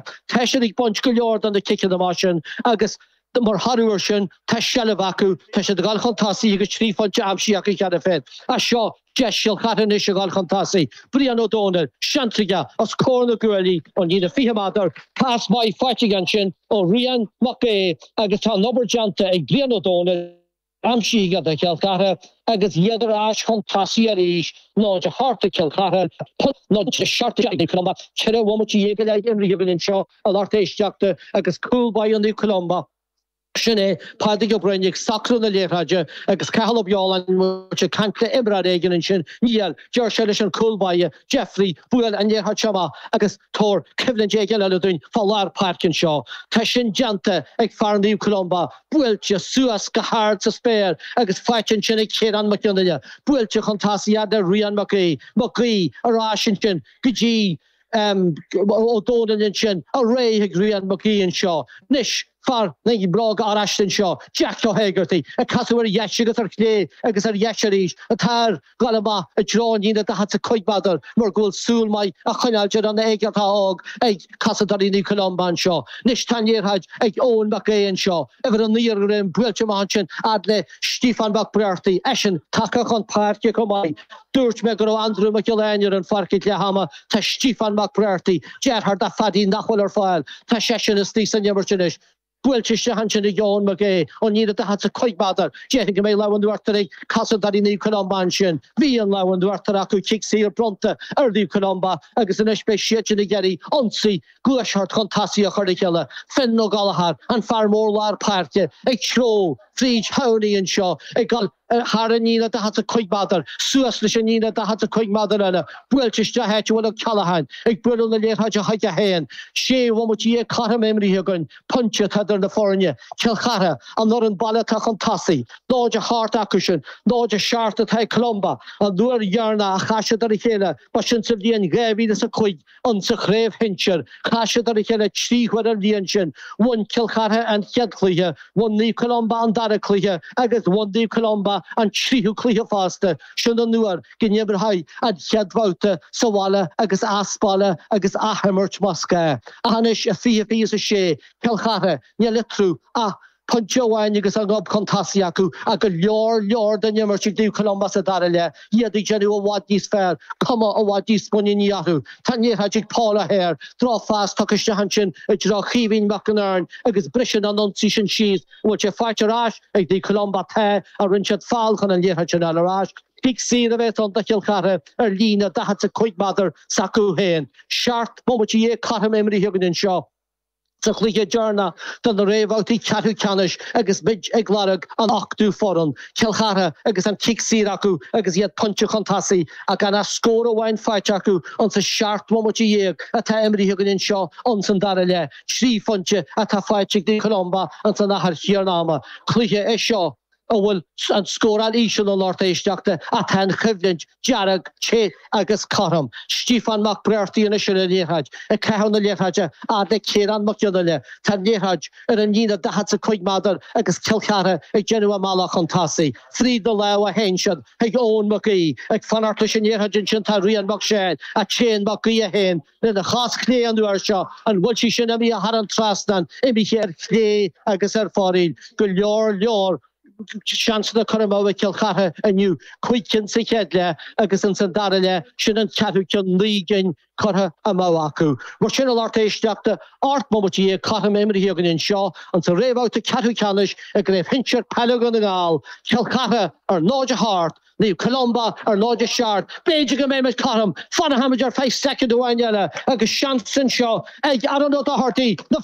Tá siad ag baint go leor de na ciceanna amach sin agus mar thoradh air sin, tá seilbh acu, tá siad ag dul chun tosaigh agus trí phointe aimsithe acu cheana féin. As seo, deis Chill Chartha anois a dhul chun tosaigh. Brian Ó Dónaill, seans aige os comhair na gcuaillí ón líne 20 méadar. Pas maith faighte aige ansin ó Rian Mac Aoidh agus tá an obair déanta ag Brian Ó Dónaill. Aimsithe ag Cill Chartha agus iad ar ais chun tosaigh arís, náid a hocht ag Cill Chartha, náid a seacht ag Naomh Columba. Ceithre bhomaite dhéag go leith imrithe, bí linn anseo a lucht éisteachta agus cúl báire Naomh Columba, sin é Pádraig Ó Broin, ag socrú na liathróide agus Cathal Ó Beoláin ag caint le imreoir éigin ansin. Níl, deir sé leis an gcúl báire. Deifrigh, buail an liathróid seo amach agus tabhair coimhlint éigin eile dúinn fá lár páirce anseo. Tá sin déanta ag fear Naomh Columba, buailte suas go hard sa spéir agus faighte ansin ag Ciarán Mac Fhionnghaile, buailte chun tosaigh fhad le Rian Mac Aoidh, Mac Aoidh ar ais ansin go dtí Ó Dónaill ansin, ar aghaidh chuig Rian Mac Aoidh anseo anois. Fear na mbróg oráiste anseo, Jack Ó hÉigeartaigh, ag casadh ar dheis agus ar chlé agus ar dheis arís, ach tá air dhul amach i dtreo an líne daichead is a cúig méadar mar go bhfuil súil maith á choinneáil ar an Éigeartach Óg ag cosantóirí Naomh Columba anseo. Anois tá an liathróid ag Eoin Mac Aoidh anseo, uimhir a naoi ar a dhroim, buailte amach ansin fhad le Stíofán Mac Breartaigh, eisean tagtha chun páirce chomh maith. Dúirt mé go raibh Andriú Mac Giolla Eáin ar an pháirc ag leath ama, tá Stíofán Mac Breartaigh, deartháir do Phaddy nach bhfuil ar fáil, tá seisean istigh san imirt anois. Buailte isteach ansin ag Eoin Mac Aoidh, ón líne daichead is a cúig méadar. Déarfainn go mbeidh lámh in uachtar ag cosantóirí Naomh Columba ansin. Bhí an lámh in uachtar acu, cic saor bronnta ar Naomh Columba agus anois beidh siadsin ag iarraidh ionsaí, gluaiseacht chun tosaigh a chur le chéile. Fionn Ó Gallchóir, an fear mór lár páirce, ag treabhadh fríd Tamhnaigh anseo ag dul thar an líne 45 méadar, suas leis an líne 45 méadar eile, buailte isteach áit a bhfuil Ó Ceallacháin ag bualadh na liathróide chuige. 1, 6 bhomaite déag cothrom imrithe againn, pointe atá idir na foirne, Cill Chartha, an fhoireann baile atá chun tosaigh, 0 a hocht acu sin, 0 a seacht atá ag Columba. An uair dheireanach a chas siad ar a chéile, ba sin sa bhliain 2005, ann sa chraobh shinsir. Chas siad ar a chéile trí huaire an bhliain sin. Bhain Cill Chartha an chéad chluiche, bhain Naomh Columba an dara cluiche agus bhain Naomh Columba an tríú cluiche fosta. Sin an uair go n-imrítí an chéad bhabhta sa bhaile agus as baile agus athimirt más gá. Ach anois i 2026, Cill Chartha, an liathróid acu. Pointe amháin agus a ngob chun tosaigh acu ach go leor leor den imirt ag Naomh Columba sa dara leath, iad ag déanamh i bhfad níos fearr, cuma i bhfad níos muiníní orthu. Tá an liathróid ag Paul O'Hare, drochphas tugtha isteach ansin i dtreo Chaoimhín Mac an Iorainn agus briseann an ionsaí sin síos. An bhfuil sé faighte ar ais ag Naomh Columba? Tá, ach rinne siad feall chun an liathróid sin a fháil ar ais. Cic saor a bheas ann do Chill Chartha ar líne 45 méadar s'acu féin. Seacht mbomaite déag cothrom imrithe againn anseo. Sa chluiche deireanach de na réamhbhabhtaí ceathrú ceannais agus muid ag lorg an ochtú foireann, Cill Chartha agus an cic saor acu agus iad pointe chun tosaigh ach gan ach scór amháin faighte acu insa seacht mbomaite déag atá imrithe againn anseo ins an dara leath, trí phointe atá faighte ag Naomh Columba ins an achar chéanna ama. Cluiche é seo. a bhfuil an scóráil íseal a lucht éisteachta ach tá an choimhlint dearg te agus cothrom. Stiofán Mac Breartaigh anois ar an liathróid, ag caitheamh na liathróide fhad le Ciarán Mac Fhionnghaile. Tá an liathróid ar an líne daichead 's a cúig méadar agus Cill Chartha ag déanamh a mbealach chun tosaigh. Fríd na lámha a théann sí chuig Eoin Mac Aoidh. Ag fanacht leis an liathróid ansin tá Rian Mac Seáin, ach téann Mac Aoidh é féin. Lena chos chlé an uair seo, an bhfuil sí sin imithe thar an trasnán, imithe ar chlé agus ar fóraoil go leor leor seansanna curtha amú ag Cill Chartha inniu, cúig cinn sa chéad leath agus ins an dara leath sin an ceathrú ceann, naoi gcinn curtha amú acu. Mar sin, a lucht éisteachta, ocht mbomaite déag cothrom imrithe againn anseo ins an réamhbhabhta ceathrú ceannais i gCraobh Shinsir Peile Dhún na nGall, Cill Chartha ar ndóigh a hocht, Naomh Columba, ar ndóigh, a seacht, b'fhéidir go mbeidh muid cothrom, fanfaimid ar feadh soicind amháin eile, agus seans anseo ag Aaron Ó Dochartaigh, na.